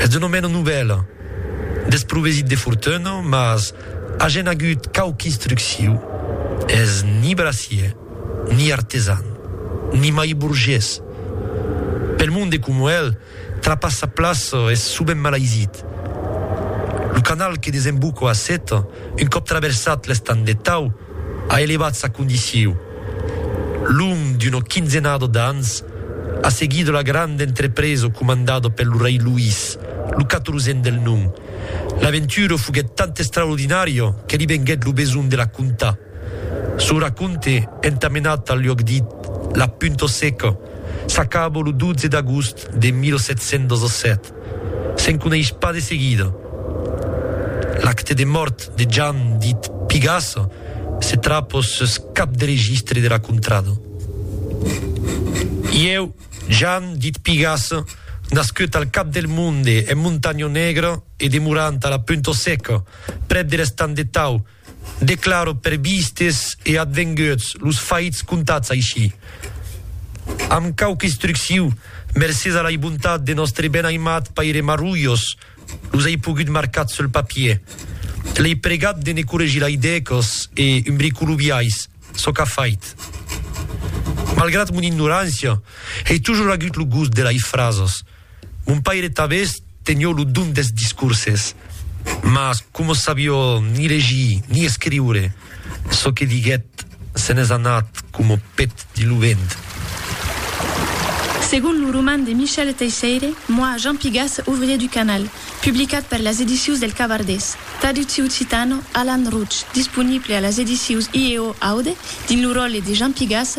Es un omena novèl, desprovesit de fortuna, mas agen agut quauqu instrucciu, es ni bracier, ni artesan, ni mai burgés. Pel monde coma el, trapar sa plaça es sovent malaisit. Lo canal que desemboca a Seta, un còp traversat l'estang de Tau, a elevat sa condiciu, long d'una quinzenada d'ans, a seguir de la granda entrepresa comandada per lo rei Luís, lo quatorzèn del nom. L'aventura foguèt tant extraordinària que li venguèt lo besonh de la contar. Son racònte, entamenat al luòc dit La Punta Seca, s'acaba lo 12 d'agost de 1717. Se'n coneis pas de seguida. L'acte de mòrt de Jan dit Pigassa se trap ò sus cap de registre de la contrada. Ieu, Jan dit Pigassa, nascut al cap del monde en Montanha Negra e demorant a la Punta Seca, prèp de l'Estang de Tau, Declaro per vistes e advenguts los faits contats aicí, amb quauque instrucciu, mercés a lai bontat de nòstre ben aimat paire Marrullos, los ai pogut marcat sul papier. L'ai pregat de ne corregir lai dècos e umbricolubiais, çò qu'a fait. Malgrat mon ignorància, ei tojor agut lo gust de lai frasos. Mon paire tabés tenió lo don des discourses, mas coma sabió ni legir ni escriure, çò que diguèt se n'es anat coma pet dins lo vent. Segon lo roman de Michel Teisseire, Moi, Jean Pigas, ouvrier du canal, publicat per las edicius del Cavardés, traducciu occitano, Alan Routch, disponible a las edicius IEO Aude dins lo ròtle de Jean Pigas,